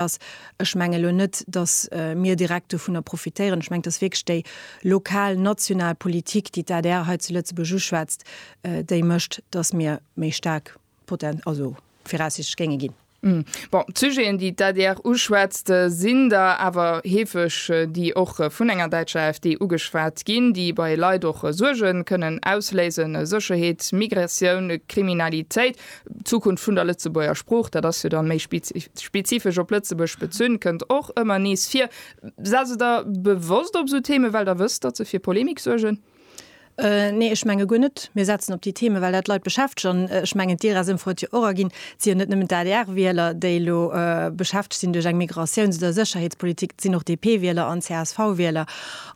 ass. Ech menge elo net, datt mir direkt dovunner profitéieren. Ech mengen, et ass wierklech déi lokal, national Politik, déi d'ADR hei zu Lëtzebuerg uschwätzt, déi mécht, datt mir méi staark viraussichtlech géinge ginn. Bon, d'Sujeten, déi d'ADR uschwätzt, sinn der awer heefeg, déi och vun enger däitscher AfD ugeschwat ginn, déi bei Leit och Suerge kënnen ausléisen, Sécherheet, Migratioun, Kriminalitéit. D'Zukunft vun der Lëtzebuerger Sprooch, dat ass jo dann méi spezifesch op Lëtzebuerg bezunn, kënnt och ëmmer nees vir. Setzt Der Der bewosst op esou Themen, well Der wësst, datt se fir Polemik suergen? Nee, ech menge guer net. Mir setzen op déi Themen, well dat d'Leit beschäftegt. An ech mengen, d'IRES-Ëmfro huet jo och erginn, et si jo net nëmmen d'ADR-Wieler, déi elo beschäftegt sinn duerch eng Migratiouns oder Sécherheetspolitik, et sinn och DP-Wieler an CSV-Wieler.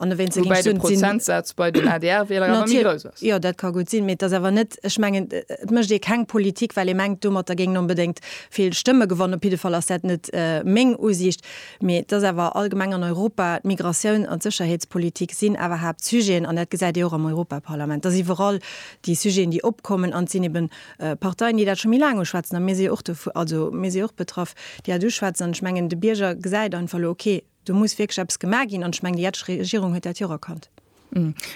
Woubäi de Prozentsaz bei den ADR-Wieler awer méi grouss ass. Jo, dat ka gutt sinn, mee et ass awer net, ech mengen, et mécht ee keng Politik, well ee mengt, domatter géing een onbedéngt vill Stëmme gewannen. Op jidde Fall ass dat net meng Usiicht. Mee et ass awer allgemeng an Europa, d'Migratioun an d'Sécherheetspolitik sinn awer Haaptsujeten, an dat gesäit ee och am Europaparlament. Et ass iwwerall déi Sujeten, déi opkommen, an et sinn eben Parteien, déi dat scho méi laang uschwätzen, a mir si jo och dovu, also mir si jo och betraff, déi dat uschwätzen. An ech mengen, de Bierger gesäit einfach elo, okay, Do muss wierklech eppes gemaach ginn, an ech mengen, déi jetzeg Regierung huet dat jo och erkannt.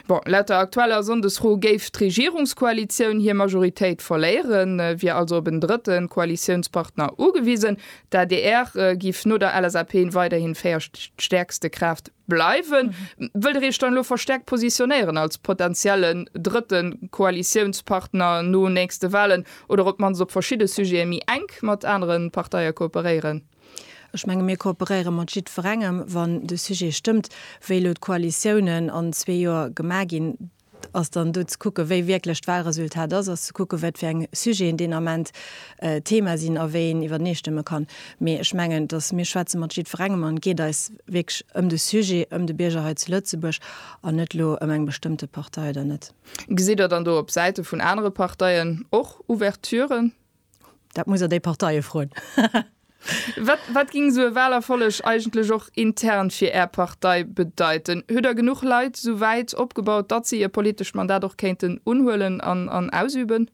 Bon, laut der aktueller Sonndesfro géif d'Regierungskoalitioun hir Majoritéit verléieren, wier also op en drëtte Koalitiounspartner ugewisen. D'adr giff no der LSAP weiderhin véiertstäerkste Kraaft bleiwen. Wëllt der Iech dann elo verstäerkt positionéieren als potentiellen drëtte Koalitiounspartner no nächste Walen, oder op d'mannst op verschidde Sujete méi enk mat anere Parteie kooperéieren? Ech menge mir kooperéiere mat jiddwerengem, wann de Sujet stëmmt. Wéi elo d'Koalitiounen an zwee Joer gemaach ginn, ass dann do ze kucke wéi wierklech d'Wahlresultat ass, ass ze kucke wat fir eng Sujeten deen Ament Thema sinn a wéi een iwwertenestëmme kann. Mee ech mengen, datt mir schwätze mat jiddwerengem an et geet eis wierklech ëm de Sujet, ëm de Bierger hei zu Lëtzebuerg an net elo ëm eng bestëmmte Partei oder net. Gesitt Der dann do op Säite vun anere Parteien och Ouverturen, Dat muss der déi Parteie froen. Wat, wat ging esou e Wahlerfolleg eigentlech och intern fir Är Partei bedeiten? Huet Der genuch Leit esou wäit opgebaut, datt se hir politescht Mandat och kéinten unhuelen an, an ausüben?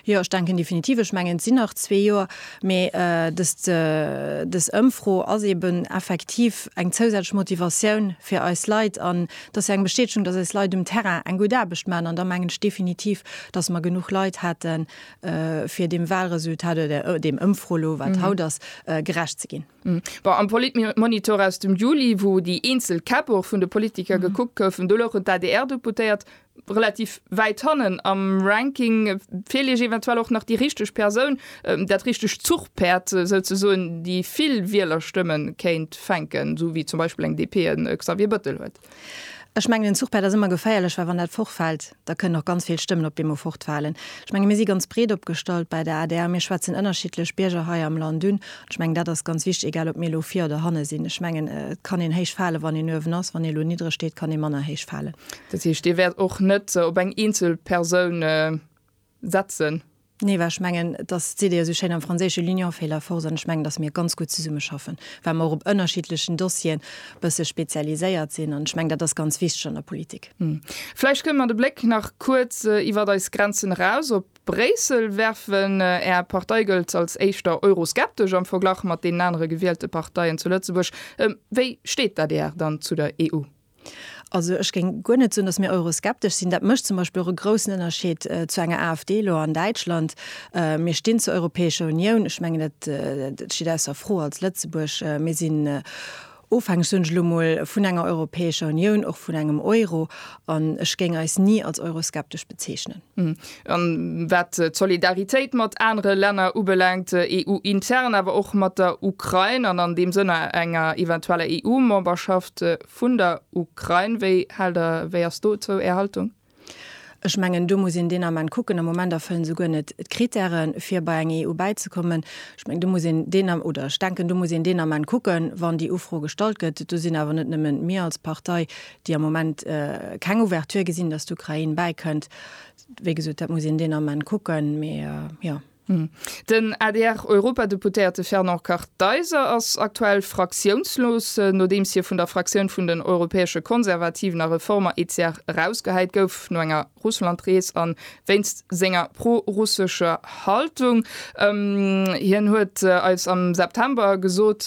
Jo, ech denken definitiv. Ech mengen, et sinn nach zwee Joer, mee dëst, dës Ëmfro ass eben effektiv eng zousätzlech Motivatioun fir eis Leit an et ass jo eng Bestätegung, datt eis Leit um Terrain eng gutt Aarbecht maachen an da mengen ech definitiv, datt mer genuch Leit hätten, fir dem Wahlresultat oder dem Ëmfro lo wat haut ass gerecht ze ginn. Bon am Politmonitor aus dem Juli, wou déi eenzel Käpp och vun de Politiker gekuckt goufen, do louchen d'ADR-Deputéiert relativ wäit hannen am Ranking. Feelt Iech eventuell och nach déi richteg Persoun, dat richteg Zuchpäerd souzesoen, déi vill Wielerstëmme kéint fänken, esou wéi zum Beispill eng DP e Xavier Bettel huet? Ech mengen, den Zuchpäerd ass ëmmer geféierlech, well wann dat fortfält, da kënnen och ganz vill Stëmmen op eemol fortfalen. Ech menge mir si ganz breet opgestallt bei der adr, mir schwätzen ënnerschiddlech Bierger hei am Land un. An ech mengen, dat ass ganz wichtig, egal ob mir elo vir oder hanne sinn. Ech mengen, et kann een héich falen, wann een uewen ass. Wann ee elo niddreg steet, kann ee manner héich falen. Dat heescht, Dir wäert och net op eng eenzel Persoun setzen. Nee, well ech mengen, et ass, et seet ee jo esou schéin am Franséische, l'union fait la force, an ech mengen, datt mir ganz gutt zesummeschaffen, well mer och op ënnerschiddlechen Dossieren e bësse spezialiséiert sinn. An ech mengen, dat ass ganz wichteg an der Politik. Vläicht kënnen mer de Bléck nach kuerz iwwert eis Grenzen eraus op Bréissel werfen. Är Partei gëllt als éischter euroskeptesch am Verglach mat deenen anere gewielte Parteien zu Lëtzebuerg. Wéi steet d'ADR dann zu der EU? Also ech géing guer net soen, datt mir euroskeptesch sinn. Dat mécht zum Beispill och e groussen Ënnerscheed zu enger AfD elo an Däitschland. Mir stinn zur Europäescher Unioun. Ech mengen et steet ausser Fro als Lëtzebuerg. Mir sinn ofhängeg, soen ech elo emol, vun enger Europäescher Unioun, och vun engem Euro. An ech géing eis ni als euroskeptesch bezeechnen. an wat d'Solidaritéit mat anere Länner ubelaangt, EU-intern, awer och mat der Ukrain, an an deem Sënn enger eventueller EU-Memberschaft vun der Ukrain. Wéi hält Der, wéi ass dozou Är Haltung? Ech mengen, do muss een deen Ament kucken. Am Moment erfëllen se guer net d'Kritären, fir bei eng EU bäizekommen. Ech mengen, do muss een deen, oder ech denken, do muss een deen Ament kucken, wann déi Ufro gestallt gëtt. Do sinn awer net nëmmen mir als Partei, déi am Moment keng Ouverture gesinn, dass d'Ukrain bäikënnt. Wéi gesot, dat muss een deen Ament kucken, mee jo. Den ADR-Europadeputéierte Fernand Kartheiser ass aktuell fraktiounslos, nodeems hie vun der Fraktioun vun den Europäesche Konservativen a Reformer, ECR, erausgehäit gouf no enger Russland-Rees a wéinst senger pro-russescher Haltung. Hien huet eis am September gesot,